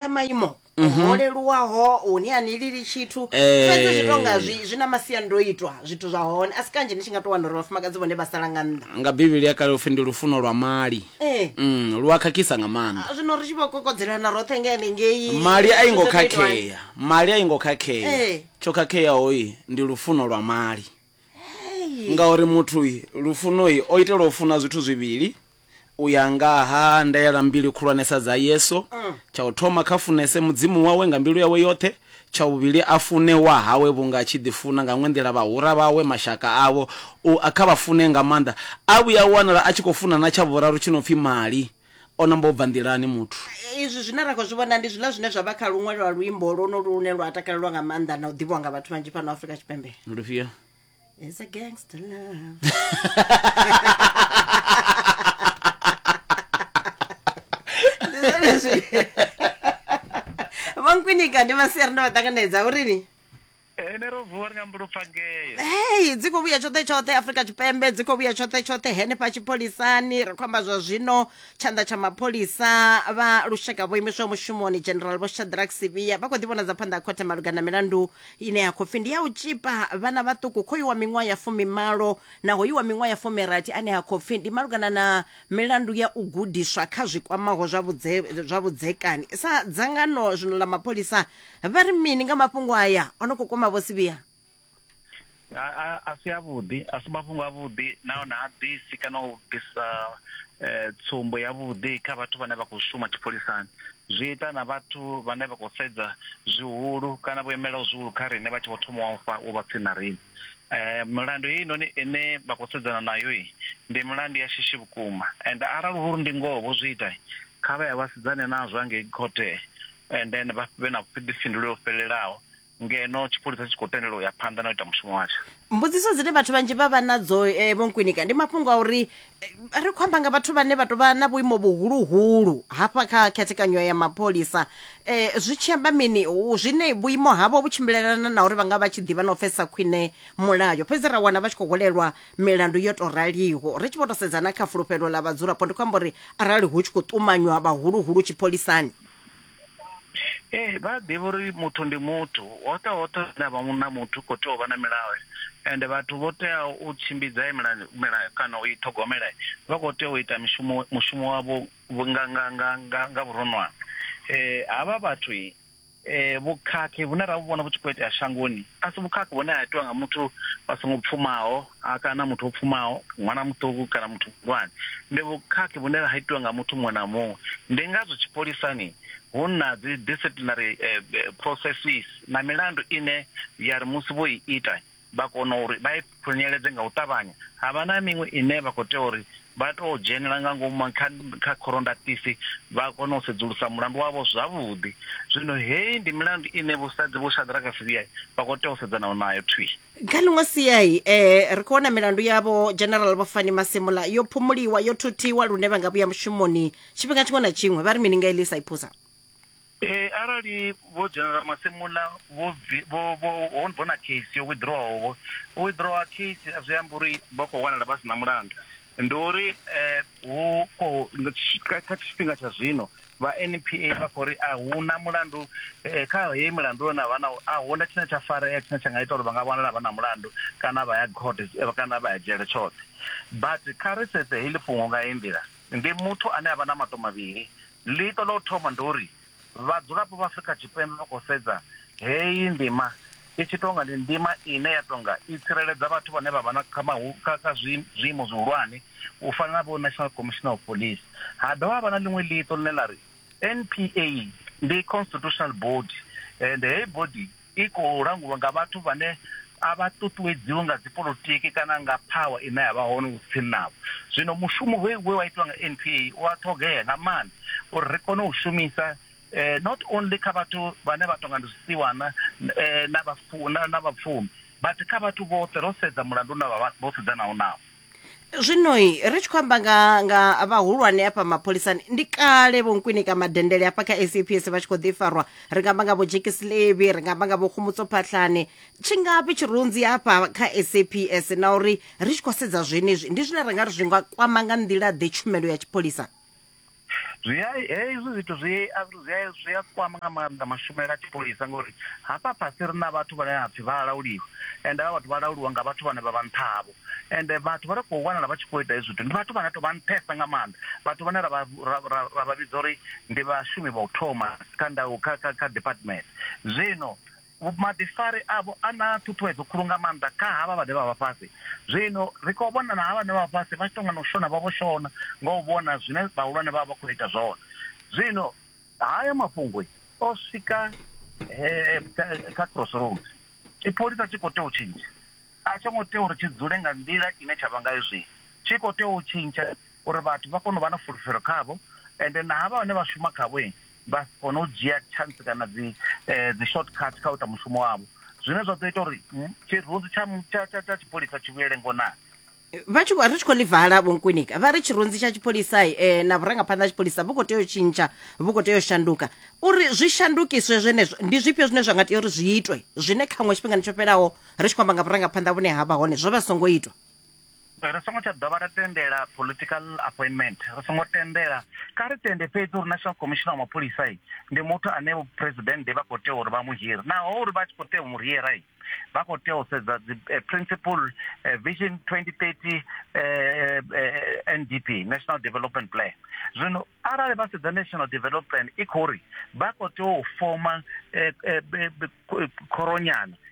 na maimo ho leluwaho hune a ni lili tshithu Eh. fhedzi zwi tonga zwi zwi na masiandoitwa zwithu zwa hone a si kanzhi ni tshi nga tou wana uri vhafumakadzi vhone vha sala nga nnḓa nga bivhili ya kale upfi ndi lufuno lwa mali Eh. mm, lu a khakhisa nga maanḓa zwino ri tshi vho kokodzelana roṱhe nga henengei mali a i ngo Zwi sa tou itwa. khakhea mali a i ngo khakhea Eh. tsho khakheaho i ndi lufuno lwa mali Hey. ngauri muthu i, lufuno i o itelwa u funa zwithu zwivhili U ya nga ha ndaela mbili khulwanesa dza Yesu, tsha u thoma kha funese Mudzimu wawe nga mbilu yawe yoṱhe, tsha vhuvhili a fune wahawe vhunga a tshi ḓifuna nga nwe nḓila vhahura vhawe, mashaka avho, u a kha vha fune nga maanḓa. A vhuya a wanala a tshi khou funa na tsha vhuraru tshi no pfi mali. O namba u bva nḓilani muthu. Izwi zwine ra khou zwi vhona ndi zwiḽa zwine zwa vha kha luṅwe lwa luimbo lwonolu lune lwa takalelwa nga maanḓa na u ḓivhiwa nga vhathu vhanzhi fhano Afrika Tshipembe. Ndi lufhio? It's a gangster love. vankwinyiga ndi masiyari ndo vatanganedza urini ene ro vuwa ri nga mbulupfa ngeye hei dzi khou vhuya tshoṱhe tshoṱhe afrika tshipembe dzi khou vhuya tshoṱhe tshoṱhe henefha tshipholisani ri khou amba zwa zwino tshanḓa tsha mapholisa vha lushaka vho imiswaho mushumoni general vho shadrack sivhiya vha khou ḓivhonadza phanḓa ha khothe malugana na milandu ine ya khou pfi ndi ya u tshipa vhana vhaṱuku khoyu wa miṅwaha ya fumimalo na hoyu wa miṅwaha ya fumirathi ane ha khou pfi ndi malugana na milandu ya u gudiswa kha zwi kwamaho zwa vhudze- zwa vhudzekani sa dzangano zwino ḽa mapholisa vha ri mini nga mafhungo aya o no khou kwama vho sivhiya a, a, a si avhuḓi a si mafhungo avhuḓi nahone ha ḓisi kana u bvisa eh, tsumbo yavhuḓi kha vhathu vhane vha khou shuma tshipholisani zwi ita na vhathu vhane vha khou sedza zwihulu kana vho imelaho zwihulu kha riṋe vha tshi vho thoma wa fa u vha tsini na riṋe um milandu heyi noni ine vha khou sedzana nayo ndi milandu ya shishi vhukuma and arali huri ndi ngoho vho zwi ita kha vha ya vha sedzane nazwo angei khothe and then vha vhe na vhuḓifhinduleli ho fhelelaho ngeno tshipholisa tshi khou tendelwa u ya phanḓa na u ita mushumo watsho mbudziso dzine vhathu vhanzhi vha vha nadzo eh, vho nkwinika ndi mafhungo a uri eh, ri khou amba nga vhathu vhane vha tou vha na vhuimo vhuhuluhulu hafha kha khethekanyo ya mapholisa eh, zwi tshi amba mini u- zwine vhuimo havho vhu tshimbilelana na uri vha nga vha tshi ḓivha na u pfesesa khwine mulayo fhedzi ra wana vha tshi khou hwalelwa milandu yo tou raliho ri tshi vho tou sedza na kha fulufhelo ḽa vhadzulapo ndi khou amba uri arali hu tshi khou ṱumanywa vhahuluhulu tshipholisani ee vha ḓivha uri muthu ndi muthu hoṱhe hoṱhe hune avha na muthu u khou tea u vha na milayo ende vhathu vho teaho u tshimbidza milayo kana u i ṱhogomela vha khou tea u ita mishumo mushumo wavho nga nga nga nga nga vhuronwane um havha vhathu um vhukhakhi vhune ra vhu vhona vhu tshi khou itea shangoni a si vhukhakhi vhune ha itiwa nga muthu vha songo pfumaho a kana muthu o pfumaho ṅwana muṱuku kana muthu muhulwane ndi vhukhakhi vhune ha itiwa nga muthu muṅwe na muṅwe ndi ngazwo tshipholisani hu na dzi disciplinary eh, eh, processes na milandu ine ya ri musi vho i ita vha kona uri vha i khunyeledze nga u ṱavhanya ha vha na miṅwe ine vha khou tea uri vha tou dzhenela nga ngomu kha kha khorondatisi vha kona u sedzulusa mulandu wavho zwavhuḓi zwino heyi ndi milandu ine vhusadzi vho shadraka sivhiyai vha khou tea u sedzana nayo thwii kha ḽiṅwe siai eh ri khou wana milandu yavho general vho fani masemola yo phumuliwa yo thuthiwa lune vha nga vhuya mushumoni tshifhinga tshiṅwe na tshiṅwe vha ri mini nga elisa iphusa Eh arali vho general masemola vho bvi- vho vho ho vho na case yo withdrawaho vho withdrawa case zwi amba uri vha khou wanala vha si na mulandu Ndi uri hu khou kha tshifhinga tsha zwino vha NPA vha khou ri a hu na mulandu kha heyi milandu yo na vha na a hu na tshine tsha farea tshine tsha nga ita uri vha nga vhonala vha na mulandu kana vha ya court kana vha ya dzhele tshoṱhe but kha ri sedze heḽi fhungo nga heyi nḓila ndi muthu ane a vha na maṱo mavhili ḽiṱo ḽa u thoma ndi uri Vhadzulapo vha Afrika Tshipembe vha khou sedza heyi ndima i tshi tou nga ndi ndima ine ya tou nga i tsireledza vhathu vhane vha vha na kha zwiimo zwihulwane u fana na vho National Commissioner of Police. Ha dovha ha vha na ḽiṅwe ḽiṱo ḽine ḽa ri NPA ndi constitutional body ende heyi body i khou langulwa nga vhathu vhane a vha ṱuṱuwedziwi nga dzipolitiki kana nga phawa ine ya vha hone u tsini navho. Zwino mushumo we we wa itiwa nga NPA u a ṱhogea nga maanḓa uri ri kone u shumisa eh, not only kha vhathu vhane vha tonga ndi zwisiwana eh, na vhapfumi but kha vhathu vhoṱhe ro sedza mulandu na vha vhoṱhe dzanaho nao zwinoi ri tshi khou amba nga nga vhahulwane hafha mapholisani ndi kale vho nkwinika madendele hafha kha saps vha tshi khou ḓi farwa ri nga amba nga vho jekisilevi ri nga amba nga vho khumutso phatlhane tshingafhi tshirunzi hafha kha saps na uri ri tshi khou sedza zwenezwi ndi zwine ra nga ri zwi nga kwama nga nḓila ḓe tshumelo ya tshipholisa zwi a hezwi zwithu zwi a zwi a zwi a kwama nga maanḓa mashumele a tshipholisa ngori hafha fhasi ri na vhathu vhane ha pfhi vha lauliwa ende vha vhathu vha lauliwa nga vhathu vhane vha vha nṱha havho ende vhathu vha ri khou wanala vha tshi khou ita hezwi zwithu ndi vhathu vhane to vha nṱhesa nga maanḓa vhathu vhane ra ra vha vhidza uri ndi vhashumi vha u thoma kha ndau kha kha kha department zwino Vhuḓifari avho a na ṱhuṱhuwedzo khulu nga maanḓa kha havha vhane vha vha fhasi. Zwino ri khou vhona na havha vhane vha vha fhasi vha tshi tou nga na u shona, vha vho shona nga u vhona zwine vhahulwane vha vha vha khou ita zwone. Zwino. Haya mafhungo o swika he, kha crossroads. Tshipholisa tshi khou tea u tshintsha. A tsho ngo tea uri tshi dzule nga nḓila ine tsha vha ngayo zwino. Tshi khou tea u tshintsha uri vhathu vha kone u vha na fulufhelo khavho, ende na havha vhane vha shuma khavho vha si kone u dzhia chance kana dzi eh, dzi short cut kha u ita mushumo wavho zwine zwa ḓo ita uri mm, tshirunzi tsha tsha- tsha- tsha tshipholisa tshi vhuyele ngonani vha tshi khou- ri tshi khou ḽi vala vhonkwinika vha ri tshirunzi tsha tshipholisa eh, na vhurangaphanḓa ha tshipholisa vhu khou tea u tshintsha vhu khou tea u shanduka uri zwi shandukiswe zwenezwo ndi zwifhio zwine zwa nga tea uri zwi itwe zwine khaṅwe tshifhingani tsho fhelaho ri tshi khou amba nga vhurangaphanḓa vhune ha vha hone zwo vha songo itwa Ri songo tsha dovha ra tendela political appointment, ri songo tendela. Kha ri tende fhedzi uri National Commissioner wa Mapholisa ndi muthu ane vho president vha khou tea uri vha mu hire. Naho uri vha tshi khou tea u mu hira, vha khou tea u sedza dzi eh, principle eh, vision 2030 eh, NDP, National Development Plan. Zwino arali vha sedza National Development Plan i khou ri vha khou tea u foma khoronyana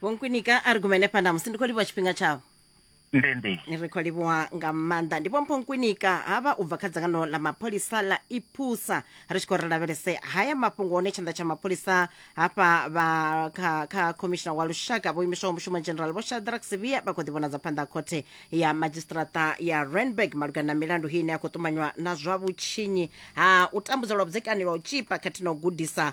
vhonkwinika a ri gumele phanḓa musi ndi khou livhuwa tshifhinga tshavho ndendi ri khou livhuwa nga maanḓa ndi vhompho nkwinika havha u bva kha dzangano ḽa mapholisa ḽa iphusa ri tshi khou ri lavhelese haya mafhungo hone tshanḓa tsha mapholisa hafha vha kha kha khomishina wa lushaka vho imiswaho mushumo general vho shadrack sivia vha khou ḓivhonadza phanḓa ha khothe ya madzhisiṱiraṱa ya randburg malugana na milandu hii ine ya khou ṱumanywa na zwa vhutshinyi ha u tambudzwa lwa vhudzekani lwa u tshipa khathihi na u gudisa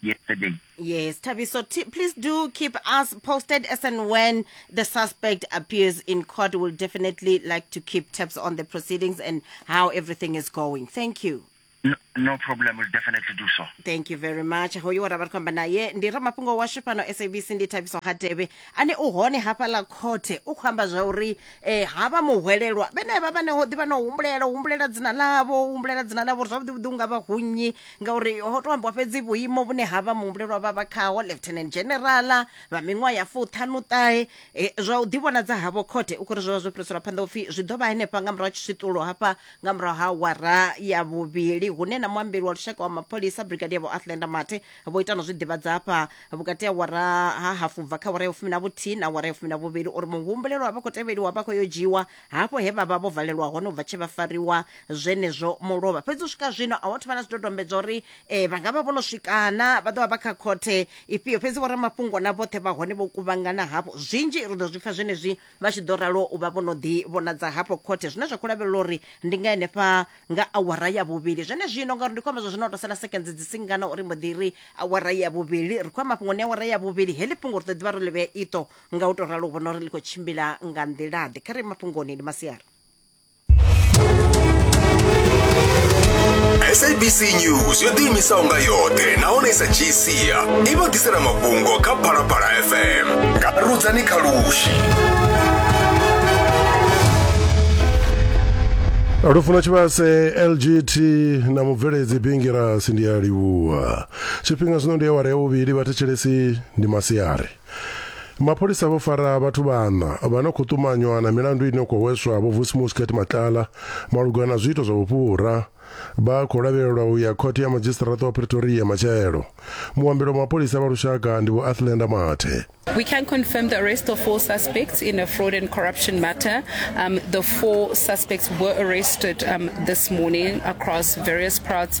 yesterday. Yes, Tabiso, t- please do keep us posted as and when the suspect appears in court. We'll definitely like to keep tabs on the proceedings and how everything is going. Thank you. No, no problem, we'll definitely do so. thank you very much hoyu wara vari kufamba naye ndi ramafhungo washu pano sabc ndi thabiso hateve ane u hone hafha ḽa khothe u khou amba zwa uri eh, havha muhwelelwa vhenevha vhane ho ḓi vha no humbulela humbulela dzina ḽavho humbulela dzina ḽavho uri zwavhuḓi vhuḓi u nga vha hu nnyi ngauri ho to ambiwa fhedzi vhuimo vhune ha vha muhumbulelwa vha vha khaho lieutenant generala vha miṅwaha ya fuṱhanuṱahe e, zwa u ḓivhonadza havho khothe u khori zwo vha zwo fhiriselwa phanḓa upfi zwi ḓo vha henefha nga murahu ha tshiswiṱulo hafha nga murahu ha wara ya vhuvhili hune na muambeli wa lushaka wa mapholisa brigadier vho athlenda mathe vho ita na zwi ḓivhadza hafha vhukati ha wara ha hafu bva kha wara ya vhufumi na vhuthihi na wara ya vhufumi na vhuvhili uri muhumbulelwa vha khou tevheliwa vha khou yo dzhiiwa hafho he vha vha vho valelwa hone u bva tshe vha fariwa zwenezwo mulovha fhedzi u swika zwino a wathu vha na zwidodombedzwa uri um vha nga vha vho no swikana vha ḓo vha vha kha khothe ifhio fhedzi vho ramafhungo na vhoṱhe vha hone vho kuvhangana hafho zwinzhi ri ḓo zwi pfa zwenezwi vha tshi ḓo ralo u vha vho no ḓi vhonadza hafho khothe zwine zwa khou lavhelela uri ndi nga henefha nga awara ya vhuvhili zwene zwino ngauri ndi khou amba zwa zwino tou sala sekendzi dzi singana uri mbo ḓi ri awara ya vhuvhili ri khou ya mafhungoni awara ya vhuvhili heḽi fhungo ri ḓo ḓivha ro ḽivhea iṱo nga u to ralo u vhona uri ḽi khou tshimbila nga nḓilaḓe kha re mafhungoni ndi masiari sabc news yo ḓiimisaho nga yoṱhe nahone i sa dzhii sia i vha ḓisela mafhungo kha phalaphala fm nga rudzani kha lushi lufuno tshivhase lgt na mubveledzi bingirasi ndi a livhuwa tshifhinga zwino ndi awara ya vhuvhili vhathetshelesi ndi masiari Mapholisa vho fara vhathu vhaṋa vha no khou ṱumanywa na milandu ine khou hweswa vho Vusi Muscat Matlala malugana na zwiito zwa vhufhura. Vha khou lavhelelwa u ya khothe ya madzhisiṱiraṱa wa Pretoria matshelo. Muambeli wa mapholisa vha lushaka ndi Vho Athlenda Mathe. We can confirm the arrest of four suspects in a fraud and corruption matter. Um, the four suspects were arrested um, this morning across various parts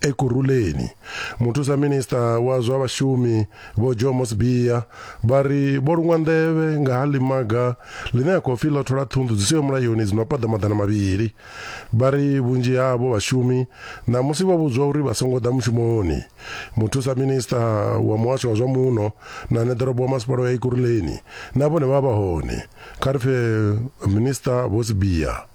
Ekurhuleni, muthusa minisiṱa wa zwa vhashumi Vho Jomo Sibiya vha ri vho luṅwa nḓevhe nga ha ḽimaga ḽine a khou pfi ḽo thola ṱhunḓu dzi siho mulayoni dzi no paḓa maḓana mavhili. Vha ri vhunzhi havho vhashumi ṋamusi vho vhudzwa uri vha songo ḓa mushumoni. Muthusa minisiṱa wa muhasho wa zwa muno na neḓorobo wa masipala wa Ekurhuleni na vhone vha vha vha hone. Kha ri pfe minisiṱa Vho Sibiya.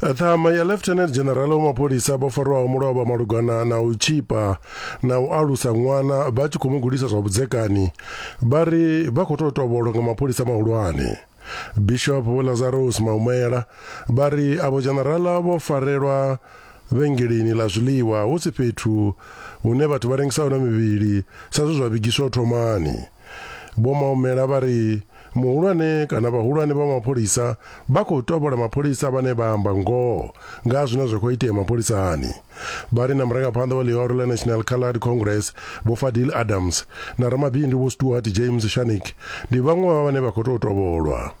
ṱhama ya lieutenant general wa mapholisa vho farwaho mulovha malugana na u tshipa na u alusa ṅwana vha tshi khou mu gudisa zwa vhudzekani vha ri vha khou tou tovholwa nga mapholisa mahulwane bishop vho lazarus maumela vha ri avho generala vho farelwa vhengeleni ḽa zwiḽiwa hu si fhethu hune vhathu vha rengisa hone mivhili sa zwe zwa vhigiswa u thomani Vho Maumela vha ri muhulwane kana vhahulwane vha mapholisa vha khou tovhola mapholisa vhane vha amba ngoho nga zwine zwa khou itea mapholisani. Vha ri na murangaphanḓa wa ḽihoro ḽa National Coloured Congress Vho Fadil Adams na ramabindu Vho Stuart James Shanik ndi vhaṅwe vha vhane vha khou tou tovholwa.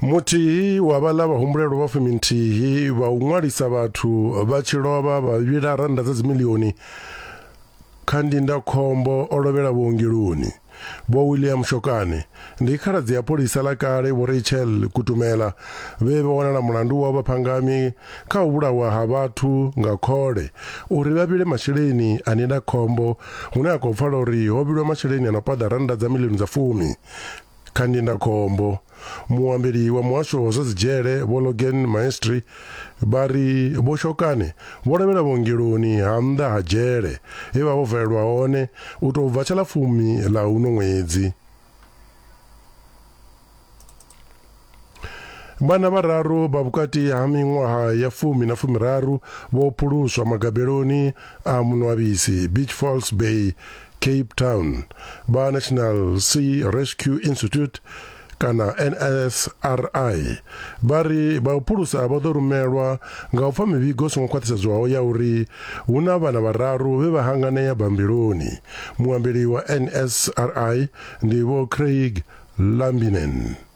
muthihi wa vhaḽa vhahumbulelwa vha fuminthihi vha u ṅwalisa vhathu vha tshi lovha vha vhila rannda dza dzimilioni kha ndindakhombo o lovhela vhuongeloni vho william shokane ndi khaladzi ya pholisa ḽa kale vho rachel kutumela vhe vha wanala mulandu wa vhaphangami kha u vhulawa ha vhathu nga khole uri vha vhile masheleni a ndindakhombo hune a khou pfala uri ho vhilwa masheleni a no paḓa rannda dza milioni dza fumi Kha ndindakhombo, muambeli wa muhasho wa zwa dzidzhele Vho Logan Maestri vha ri Vho Shokane vho lovhela vhuongeloni ha nnḓa ha dzhele he vha vho valelwa hone u tou bva tsha ḽa fumi ḽa uno ṅwedzi. Vhana vhararu vha vhukati ha miṅwaha ya fumi na fumiraru vho phuluswa magabeloni a munwabisi Beach Falls Bay, Cape Town. Vha National Sea Rescue Institute kana NSRI vha ri vha u phulusa vha ḓo rumelwa nga u pfa mivhigo songo khwaṱhisedzwaho ya uri hu na vhana vhararu vhe vha hanganea bambiloni. Muambeli wa NSRI ndi Vho Craig Lambinen.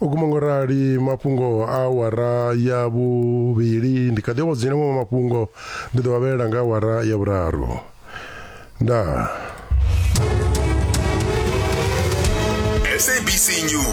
u guma ngo rali mafhungo a awara ya vhuvhili ndi kha ḓi awadzina maṅwe mafhungo ndi ḓo vhavhelela nga awara ya vhuraru ndaa sabc news